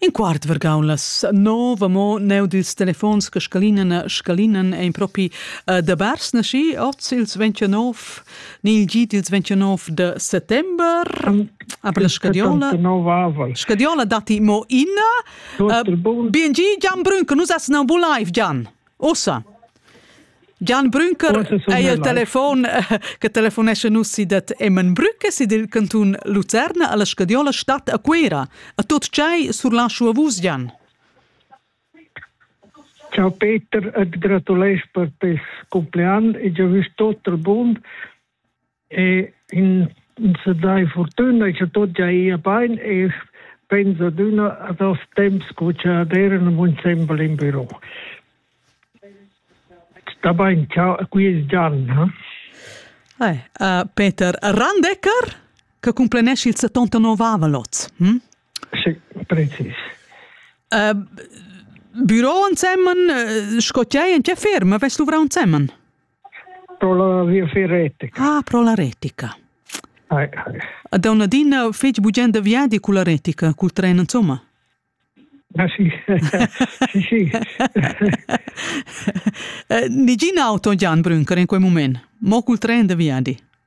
In quart vargaun las nov amo neu dils telefons che scalinan e scalinan ein propi uh, da bars nasci oz ils 29 ni il gi dils 29 de settember aber la scadiola scadiola datti mo ina uh, bien gi Gian Brünke nus essen am live Gian Ussa. Gian Brünker ei il telefon eh, che telefonesce nus si dat Emen Brücke si dil cantun Lucerna alla Scadiola Stadt a Cuera. A tot tgei surlaschu a vus, Gian. Ciao Peter, et gratulais per tes compleanno e già vis tot il bund e in se dai fortuna e che tot ja ia bein e pensa d'una a das temps co che aderen un sembel in büro. Da bein, ciao, qui es Gian, ha? Ai, uh, Peter Randecker, che complenesci il 79 lot. Hm? Sì, precis. Uh, büro ansemmen, uh, scotiai in che ferma, vest luvra ansemmen? Pro la viafier retica. Ah, pro la retica. Ai, ai. Da una dina feci bugenda viadi cu la retica, cul tren, insomma. Ah sì, sì, sì. Nigina auto Jan Brünker in quel moment, mo cul tren de viadi.